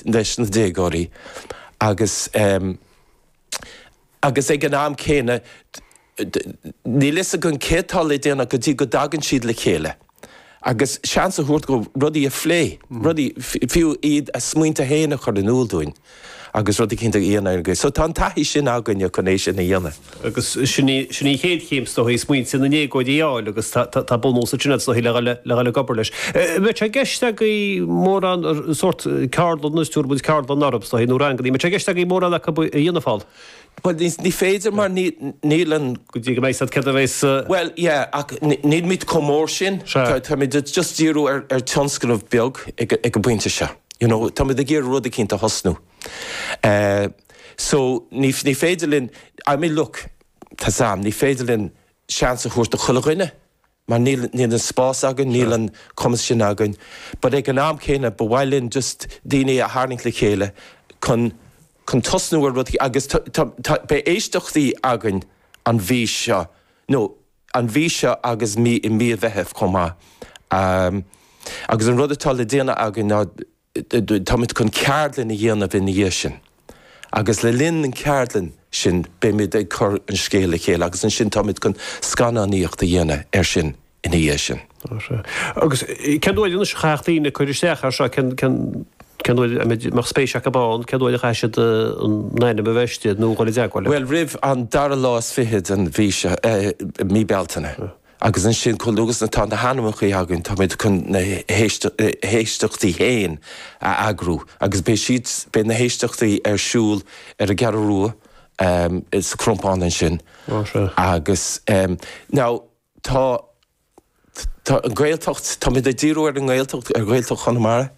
leis na déagóirí agus agus ag an am céanna níl fhios againn céard atá le déanamh go dtí go dtagann siad le chéile agus seans a thabhairt dhóibh rudaí a phlé, rudaí, fiú iad a smaointe féin a chur in iúl dúinn agus rud eicínt a dhéanamh ar an gcaoi. So tá an taithí sin againne chun é sin a dhéanamh. agus sin í an chéad chéim, is dóigh, smaointe na ndéagóirí a fháil agus tá bunús ansin, is dóigh, le dhul ag obair leis. Bheadh sé i gceist agaibh mórán sórt ceardlann, is tugaimid ceardlann orthu, is dóigh, nó ranganna, bheadh sé i gceist agaibh mórán acu a dhéanamh thall? Bhuel, ní féidir mar níl an. Go dtí go mbeidh a fhios céard a bheidh sa. Bhuel, yeah, ach nílimid chomh mór sin, táimid just ag díriú ar tionscnamh beag ag an bpointe seo, you know, táimid ag iarraidh rud eicínt a thosnú. Eh, so, ní, ní féidir linn, I mean look, tá sé, ní féidir linn seans a thabhairt do chuile dhuine mar níl, níl an spás againn, níl an cumas sin againn but ag an am céanna ba mhaith linn just daoine a tharraingt le chéile chun, chun tosnú ar rud agus tá, tá, tá, beidh éisteachtaí againn an mhí seo, nó, an mhí seo agus mí, i mí an Mheithimh chomh maith. Agus an rud atá le déanamh againn ná. Táimid chun ceardlann a dhéanamh ina dhiaidh sin agus le linn an cheardlann sin beimid ag cur an scéal le chéile agus ansin táimid chun scannánaíocht a dhéanamh air sin ina dhiaidh sin. Agus cén uair anois a chaithfeadh daoine cur isteach air seo, má tá spéis acu ann, cén uair a chaithfidh siad a n-ainm a bheith istigh nó dhul i dteagmháil le. Bhuel roimh an dara lá is fiche den mhí seo, mí Bealtaine. Agus ansin chomh luath is atá na hainmneacha againn táimid chun na héisteachtaí féin a eagrú agus beidh siad, beidh na héisteachtaí ar siúl ar an gCeathrú Rua sa Chrompán ansin agus now tá, tá an Ghaeltacht, táimid ag díriú ar an nGaeltacht, ar Ghaeltacht Chonamara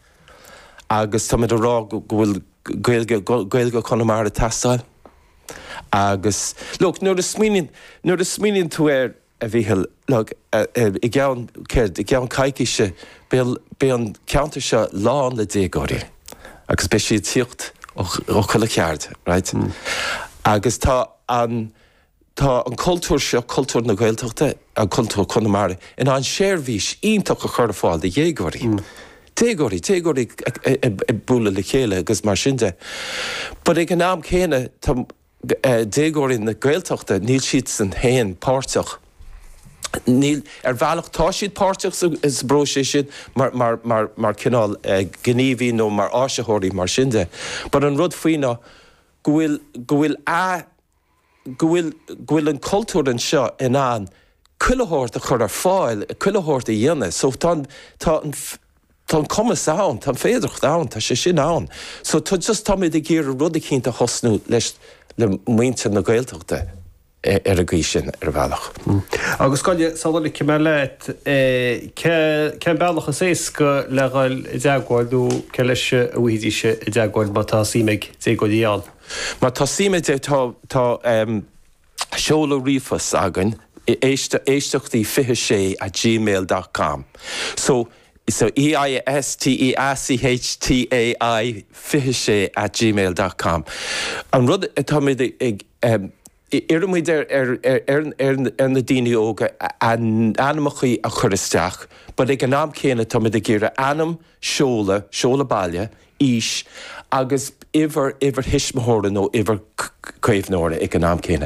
agus táimid ag rá go bhfuil Gaeilge, Gaeilge Chonamara ag teastáil. Agus, look, nuair a smaoiníonn, nuair a smaoiníonn tú air, a Mhícheál, look, i gceann, céard, i gceann coicíse, beidh, beidh an ceantar seo lán le déagóirí agus beidh siad ag tíocht ó chuile cheaird, right? Agus tá an, tá an cultúr seo, cultúr na Gaeltachta, cultúr Chonamara, in ann seirbhís iontach a chur ar fáil do dhéagóirí. déagóirí, déagóirí ag bualadh le chéile agus mar sin de. But ag an am céanna tá déagóirí na Gaeltachta, níl siadsan féin páirteach, níl, ar bhealach tá siad páirteach sa bpróiseas sin mar, mar, mar, mar cineál gníomhaí nó mar áisitheoirí mar sin de. But an rud faoi ná go bhfuil, go bhfuil a. go bhfuil, go bhfuil an cultúr anseo in ann chuile shórt a chur ar fáil, chuile shórt a dhéanamh. So tá an, tá an, tá an cumas ann, tá an fhéidearthacht ann, tá sé sin ann. So tá just, táimid ag iarraidh rud eicínt a thosnú leis, le muintir na Gaeltachta ar an gcaoi sin, ar bhealach. Agus cogar, sula ligim uaim thú, cé, cén bealach is éasca le dhul i dteagmháil nó cé leis a ngabhfaidís i dteagmháil má tá suim ag déagóirí ann? Má tá suim, tá, tá seoladh ríomhphoist againn, éisteachtaí 26 at gmail dot com. So, so EISTEACHTAI 26 at gmail dot com. An rud atá muid ag. Iarrann muid ar na daoine óga a n-ainmeacha a chur isteach but ag an am céanna tá muid ag iarraidh ainm, seoladh, seoladh baile, aois agus uimhir, uimhir thuismitheora nó uimhir caomhnóra ag an am céanna.